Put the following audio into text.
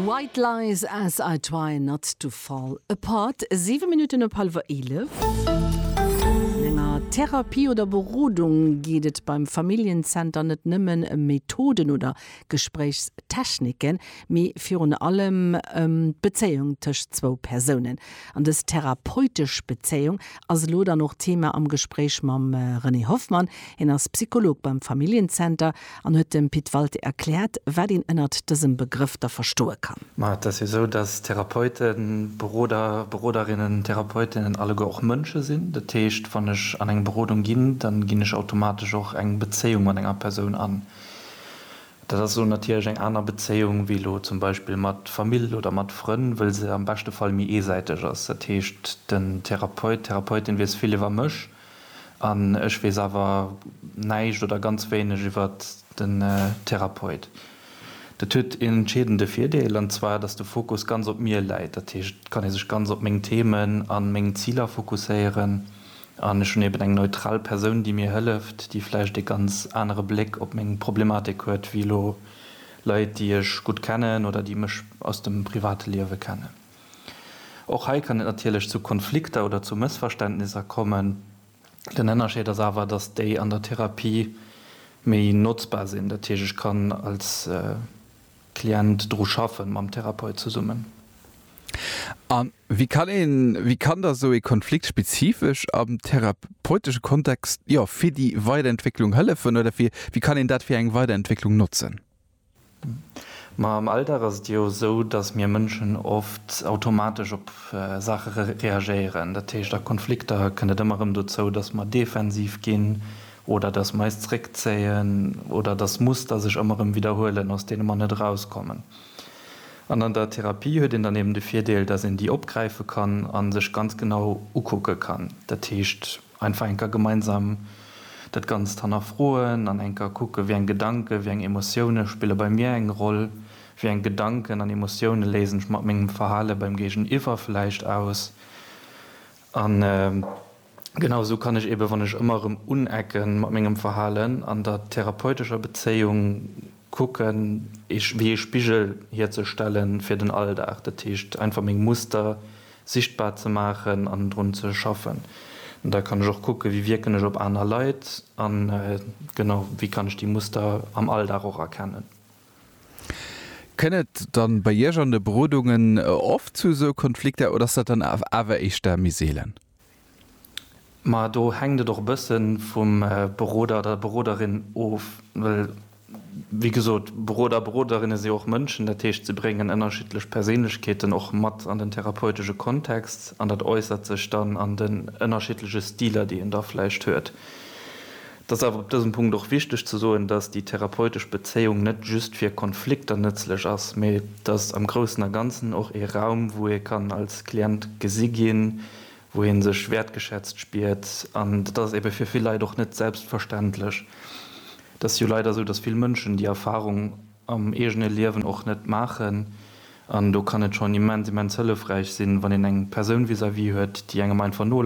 White Lies as I try not to fall apart, 7 Minutten op hallwer 11. An enger Therapie oder Berodung geet et beim Familljen-Zenter net nëmmen ëm Methoden oder Gespréichstechniken, mee virun allem ëm d'Bezéiung tëscht zwou Persounen. An dës therapeutesch Bezéiung ass elo dann och Thema am Gespréich mam René Hoffmann. Hien ass Psycholog beim Familljen-Zenter an huet dem Pit Walté erkläert, wat een ënnert dësem Begrëff da verstoe kann. Ma et ass jo esou, datt Therapeuten, Beroder, Beroderinnen, Therapeutinnen alleguer och Mënsche sinn. Dat heescht, wann ech an eng Berodung ginn, da ginn ech automatesch och eng Bezéiung mat enger Persoun an. Dat ass elo natierlech eng aner Bezéiung wéi elo zum Beispill mat Famill oder mat Frënn, wëll se am beschte Fall méi eesäiteg ass. Dat heescht, den Therapeut, d'Therapeutin wiisst vill iwwer mech. An ech weess awer näischt oder ganz wéineg iwwer den Therapeut. Dat huet een entscheedende Virdeel, an zwar, dass de Fokus ganz op mir läit. Dat heescht, et kann ee sech ganz op meng Themen an meng Ziler fokusséieren. An ech hunn eben eng neutral Persoun, déi mir hëlleft, déi vläicht ee ganz anere Bléck op meng Problematik huet, wéi elo Leit, déi ech gutt kennen oder déi mech aus dem private Liewe kennen. Och hei kann et natierlech zu Konflikter oder zu Mëssverständnisser kommen. Den Ënnerscheed ass awer, dass déi an der Therapie méi notzbar sinn, dat heescht ech kann als Client dru schaffen, mam Therapeut zesummen. A wéi kann ee, wéi kann da sou ee Konflikt spezifesch am therapeutesche Kontext, jo, fir déi Weiderentwécklung hëllefen oder wéi kann een dat fir eng Weiderentwécklung notzen? Ma am Alldag ass et jo esou, datt mir Mënschen oft automatesch op Saache reagéieren. Dat heescht, a Konflikter kënnt et ëmmer erëm dozou, datt mer defensiv ginn oder datt mer eis zréckzéien oder datt Muster sech ëmmer erëm widderhuelen, aus deene mer net erauskommen. An an der Therapie huet een dann eben de Virdeel, datt een déi opgräife kann a sech ganz genau ukucke kann. Dat heescht. Einfach enker gemeinsam dat Ganzt hannerfroen an enker kucken, wéi eng Gedanken, wéi eng Emotioune spille bei mir eng Roll, wéi eng Gedanken an Emotioune léisen ech mat mengem Verhale beim Géigeniwwer vläicht aus. An genau esou kann ech eeben, wann ech ëmmer erëm unecken mat mengem Verhalen an der therapeutescher Bezéiung, Kucken, eech wéi ee Spigel hierzestellen fir den Alldag. Dat heescht, einfach meng Muster sichtbar ze maachen an drun ze schaffen. Da kann ech och kucken, wéi wierken ech op aner Leit an genau, wéi kann ech déi Muster am Alldag och erkennen. Kënn et dann bei Iech an de Berodungen oft zu esou Konflikter oder ass dat dann awer éischter méi seelen? Ma do hänkt et och e bësse vum Beroder oder der Beroderin of, well, wéi gesot, Beroder a Beroderinne si och Mënschen, dat heescht, se bréngen ënnerschiddlech Perséinlechkeeten och mat an den therapeutesche Kontext an dat äussert sech dann an den ënnerschiddleche Stiler, déi een da vläicht huet. Et ass awer op dësem Punkt och wichteg ze soen, dass déi therapeutesch Bezéiung net just fir Konflikter nëtzlech ass, mä et ass am Groussen a Ganzen och ee Raum, wou ee kann als Klient gesi ginn, wou ee sech wäertgeschätzt spiert. An dat ass ebe fir vill Leit och net selbstverständlech. Et ass jo leider esou, dass vill Mënschen déi Erfahrung am eegene Liewen och net maachen. An do kann et schonn immens, immens hëllefräich sinn, wann een eng Persoun vis-à-vis huet, déi engem einfach no.